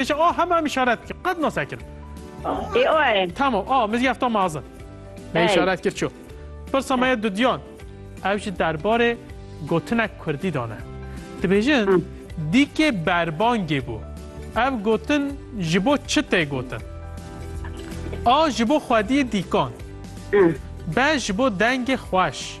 Êşa a hema em işaret bike. Qet nase kir. Ê o e. Tamam a mizî efta mazin. Me işaret kir ço. Pirsa me ye dudiyan. Ev ji derbarê gotinek kurdî dane. Dibêjin dîkê berbangê bû. Ev gotin ji bo çi tê gotin? A ji bo xwediyê dîkan. B ji bo dengê xweş.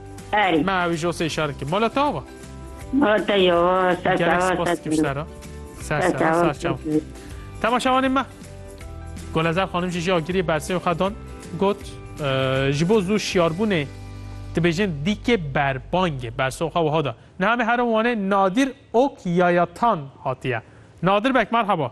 Erî. Me ew jo sê şerikî. Mala te ava? Mala te yo. Ser ser. Gerek spas dikim sera. Ser ser. Ser çav. Temaşavanê me. Golezer xanim jî jî agirî bersê xwe dan got ji bo zû şiyarbûnê dibêjin dîkê berbangê berso xwe wiha da. Niha me herin wanê Nadir Ok Yayatan hatiye. Nadir bek merhaba.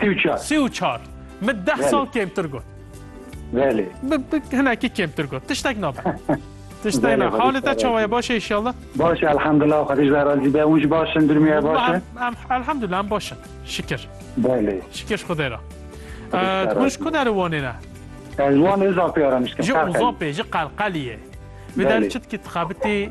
Sî û çar. Sî û çar. Min deh sal kêmtir got. Belê. Hinekî kêmtir got. Tiştek nabe. Tiştek nabe. Halê te çawa ye baş e inşallah? Baş e elhamdullah xwedî ji razî be. Hûn jî baş in durmîye baş e. Elhamdullah em baş in. Şikir. Belê. Şikir xwedê ra. Hûn ji ku derê wanê ne? Ez wanê zapê ara mişkin. Ji uzapê ji qelqeliyê. Vê der çit ki tixabitî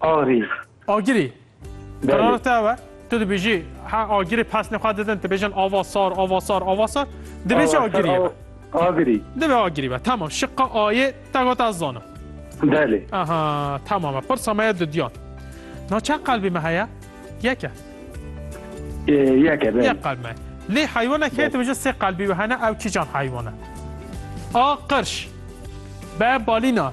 Agirî. Agirî. Qerara te ew e? Tu dibêjî he agirî pesnê xwe didin dibêjin ava sar, ava sar, ava sar. Divê jî agirî ye. Agirî. Divê agirî be. Tamam. Şiqa A'yê te got ez zanim. Belê. Aha, tamam e. Pirsa me ye dudiyan. Na çend qelbê me heye? Yek e. Yek e, belê. Yek qelb me. Lê heywanek heye dibêje sê qelbî we hene ew kîjan heywan e? A. Qirş. B. Balîna.